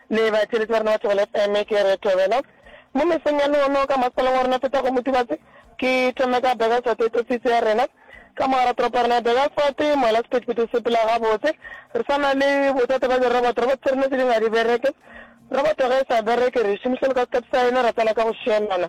Le ba tšweletši ba rena ba Thobela FM, ke re Thobela. Mo mesong ya lehono ka masalang wa rena Phetago Motibatse, ke thome ka Burgersfort e tlotsitse ya rena. Ka mogara toropo ya rena ya Burgersfort, moela sephethephethe se phela gabotse. Re sa na le bothata ba diroboto, roboto tša rena tše dingwe ga di bereke. Roboto ge e sa bereke re e šomiša le ka sekhathi sa yona, ra tsena ka go šielana.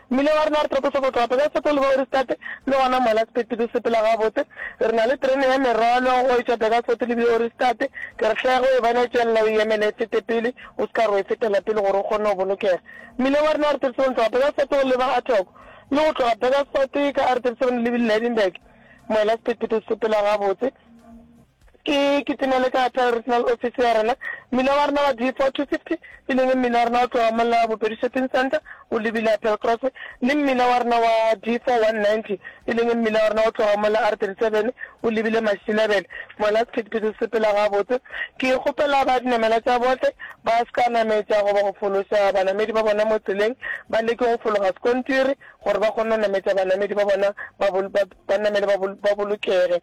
Mmila wa rena re tlotosa go tloga Pelaseto go leba Oristate, le gona mola sephethephethe se sepela gabotse. Re na le terene ya merwalo go etšwa Pelaseto le bile Oristate. Ke re hle ge o e bona e tšwelela o e emele e fete pele, o se ka re o e fetela pele gore o kgone go bolokega. Mmila wa rena Arthurson go tloga Pelaseto go leba Athogo, le go tloga Pelaseto e ka Arthurson le bile Lydenburg, moela sephethephethe se sepela gabotse. Ke kitimele ka apea regional office ya rena. Mmila wa rena wa D4-250, e leng mmila wa rena o tloga mola Bopedi Shopping Centre o lebile Appeal Crossway, le mmila wa rena wa D4-190, e leng mmila wa rena o tloga mola R37 o lebile Mashinebele. Mola sephethephethe se sepela gabotse. Ke kgopela ba dinamelwa tša bohle ba se ka nametša goba go fološa banamedi ba bona mo tseleng, ba leke go fologa sekontiri gore ba kgone go nametša banamedi ba bona ba banamele ba bolokege.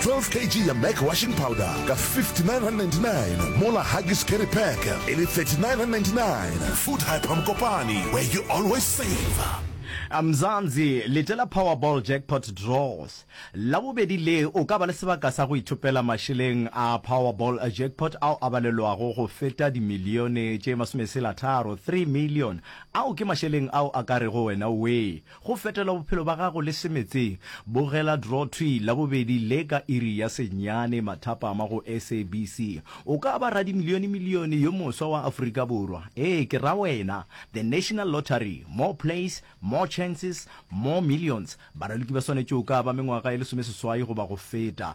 12 kg ya Mac washing powder ka 59.99 mola Huggies carry pack e le 39.99 Food Hyper Mokopane where you always save. Mzansi, lete la Powerball Jackpot Draws la bobedi le o ka ba le sebaka sa go ithopela mašeleng a Powerball Jackpot ao a balelwago go feta dimilione tše masomesela tharo, three million, ao ke mašeleng ao a ka rego wena wee Go fetela bophelo ba gago le semetseng, bogela Draw Tree Labobedi le ka iri ya senyane mathapama go SABC. O ka ba radimilionemilione yo moswa wa Afrika Borwa. Ee, ke ra wena. The National Lottery, More Plays, More Chances, More Millions. Baraloki ba swanetše o ka ba mengwaga e lesomeseswai goba go feta.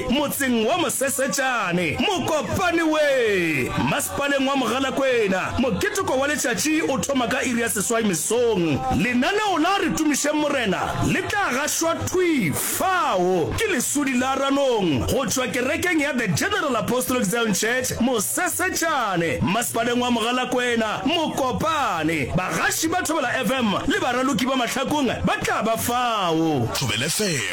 Motseng wa Mosesetšane, Mokopane we. Masepaleng wa Mogalakwena, moketeko wa letšatši o thoma ka iri ya seswai mesong. Lenaneo la Re Tumišeng Morena le tla gašwa thwi fao ke lesudi la ranong go tšwa kerekeng ya The General Apostolic Zion Church, Mosesetšane, Masepaleng wa Mogalakwena, Mokopane. Bagaši ba Thobela FM le baraloki ba mahlakong ba tla ba fao. Thobela FM.